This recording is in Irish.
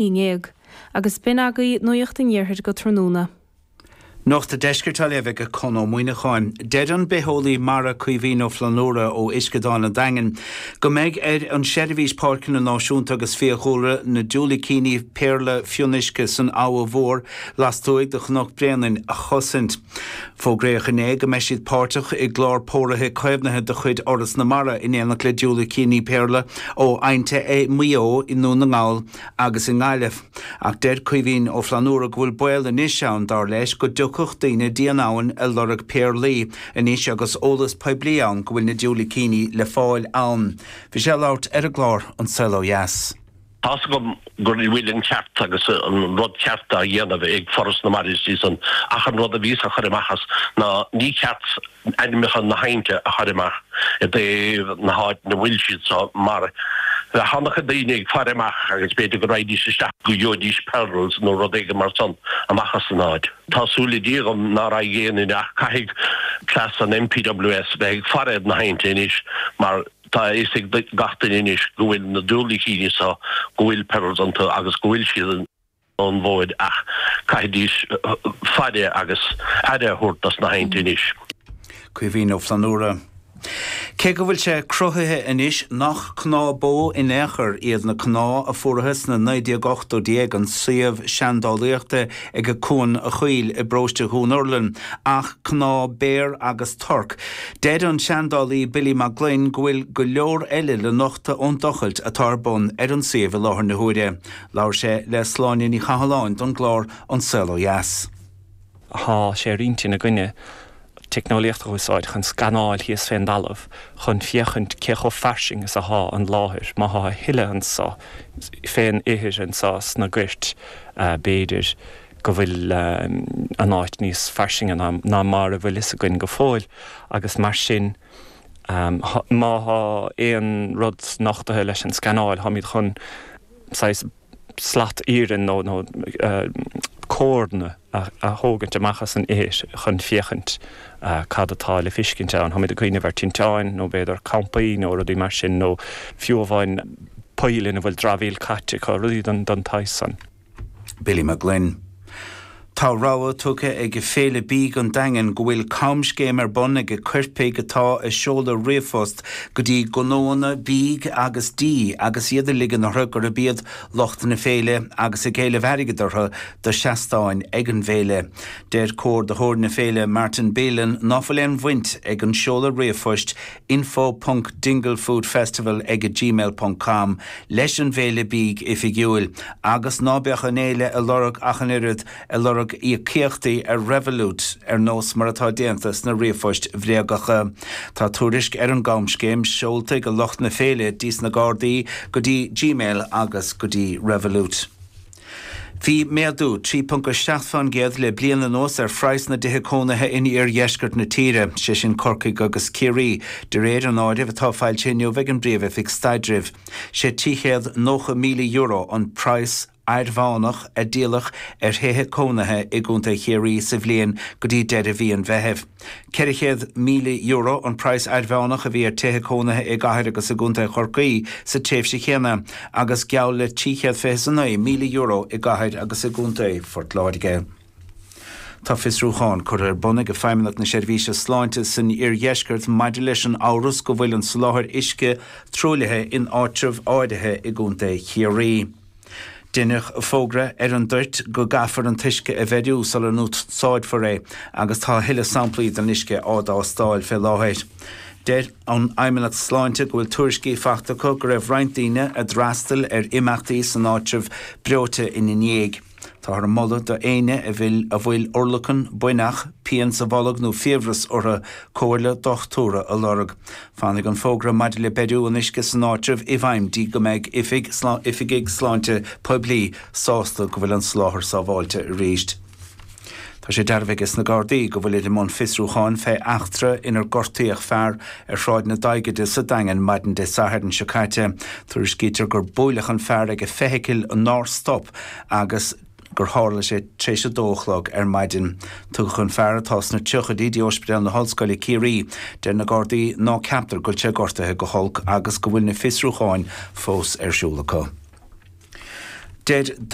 Uí nGéag, agus b'in agaibh nuacht an iarthair go tráthnóna. Nuacht an deiscirt á léamh ag Conn Ó Muíneacháin. Deir an bitheolaí mara Caoimhín Ó Flannúra ó Uisceadán an Daingin go mbeidh ar an Seirbhís Páirceanna Náisiúnta agus Fiadhúlra na diúilicíní péarla fionnuisce san Abha Mhór lastuaidh de Chnoc Bréanainn a chosaint. Fógraíodh inné go mbeidh siad páirteach i gclár póraithe caomhnaithe de chuid Fhoras na Mara in éineacht le diúilicíní péarla ó aibhnte i Maigh Eo, i nDún na nGall agus i nGaillimh. Ach deir Caoimhín Ó Flannúra go bhfuil baol anois ann, dar leis, go dtiocfadh daoine dtí an abhainn ag lorg péarlaí anois agus eolas poiblí ann go bhfuil na diúilicíní le fáil ann. Bhí sé ag labhairt ar an gclár An Saol Ó Dheas. Tá's agam go bhfuil an ceart agus an rud ceart á dhéanamh ag Foras na Mara is iadsan ach an rud a bhíos á chur amach as ná ní ceart ainmneacha na haibhnte a chur amach i dtaobh na háit 'na bhfuil siad so mar bheadh an-chuid daoine ag faire amach agus b'fhéidir go raghaidís isteach go gheobhaidís pearls nó rud éigin mar san amach as an áit. Tá súil le Dia agam ná raghaidh aon duine ach caithfidh cleas an NPWS bheith ag faire ar na haibhnte anois mar Tá a fhios ag gach duine anois go bhfuil na diúilicíní seo go bhfuil péarlaí iontu agus go bhfuil siad ar an bhfód ach caithfidís faire agus aire a thabhairt dos na haibhnte anois. Caoimhín Ó Flannúra. Cé go bhfuil sé cruthaithe anois nach cnámha bó in aon chor iad na cnámha a fuarathas sna 1980idí ag an suíomh seandálaíochta, ag Cuan an Chaoil i bparóiste Dhún Urlann, ach cnámha béar agus torc. Deir an seandálaí Billy Mag Fhloinn go bhfuil go leor eile le nochtadh ón dtochailt atá ar bun ar an suíomh i láthair na huaire. Labhair sé le Sláine Ní Chathalláin don gclár An Saol Ó Dheas. Tá sé ar intinn againne teicneolaíocht a úsáid chun scanáil thíos fén dtalamh chun féachaint cé chomh fairsing is athá an láthair, má thá a thuilleadh anso fén ithir, anso sna goirt, b'fhéidir go bhfuil an áit níos fairsinge ná mar a bhfuil fhios againn go fóill agus mar sin má thá aon rud nochtaithe leis an scanáil tháimíd chun saghas slat iarainn nó córanna a thógaint amach as an ithir chun féachaint cad atá le fiscint ann. Táimid ag cuimhneamh ar tinteáin nó b'fhéidir campaí nó rudaí mar sin nó fiú amháin poill ina bhfuil dramhaíl caite acu, rudaí don tsaghas san. Billy Mag Fhloinn. Tá rabhadh tugtha ag Féile Bídh an Daingin go bhfuil camscéim ar bun ag coirpigh atá ag seoladh ríomhphost go dtí gnóanna bídh agus dí agus iad ag ligean orthu gurb iad lucht na féile agus ag éileamh airgead orthu do seastáin ag an bhféile. Deir comhordaitheoir na féile Martin Bealin ná fuil aon bhaint ag an seoladh ríomhphoist info.dinglefoodfestival ag gmail ponc com leis an bhféile bídh oifigiúil, agus ná beadh an fhéile ag lorg ach an oiread, ag lorg íocaíochtaí ar Revolut, ar nós mar atá déanta sna ríomhphoist bhréagacha. Tá tuairisc ar an gcamscéim seolta ag lucht na féile dtí sna Gardaí go dtí Gmail agus go dtí Revolut. Bhí méadú 3.7% le bliain anuas ar phraghas na dtithe cónaithe in iardheisceart na tíre, sé sin Corcaigh agus Ciarraí, de réir an áirimh atá foilsithe inniu ag an bPríomh-Oifig Staidrimh. Sé €290,000 an praghas airmheánach a díoladh ar thithe cónaithe i gContae Chiarraí sa bhliain go dtí deireadh mhí an Mheithimh. €400,000 an praghas airmheánach a bhí ar thithe cónaithe i gCathair agus i gContae Chorcaí sa tréimhse chéanna agus geall le €329,000 i gCathair agus i gContae Phort Láirge. Tá fiosrúchán curtha ar bun ag Feidhmeannacht na Seirbhíse Sláinte san Iardheisceart maidir leis an amhras go bhfuil an soláthar uisce truaillithe in áitreabh áirithe i gContae Chiarraí. Deineadh fógra ar an Luan Dúirt go gcaithfear an t-uisce a bheiriú sula n-úsáidfear é agus tá a thuilleadh samplaí den uisce á dtástáil fé láthair. Deir an Fheidhmeannacht Sláinte go bhfuil tuairiscí faighte acu go raibh roinnt daoine a d'fhreastail ar imeachtaí san áitreabh breoite ina ndiaidh. Táthar a moladh do éinne a bhfuil urlacan, buinneach, pian sa bholg nó fiabhras orthu comhairle dochtúra a lorg. Fanfaidh an fógra maidir le beiriú an uisce san áitreabh i bhfeidhm dtí go mbeidh Oifig Oifigigh Sláinte Poiblí sásta go bhfuil an soláthar sábháilte arís. Tá sé dearbhaithe ag na Gardaí go bhfuilid i mbun fiosrúcháin fé eachtra inar gortaíodh fear ar Shráid na Daighde sa Daingean maidin Dé Sathairn seo caite. Tuairiscítear gur buaileadh an fear ag feithicil nár stop agus. gur tharla sé tar éis a dó a chlog ar maidin. Tugadh an fear, atá sna tríochaidí, dtí Ospidéal na hOllscoile, Ciarraí. Deir na Gardaí ná ceaptar go bhfuil sé gortaithe go holc agus go bhfuil na fiosrúcháin fós ar siúl acu.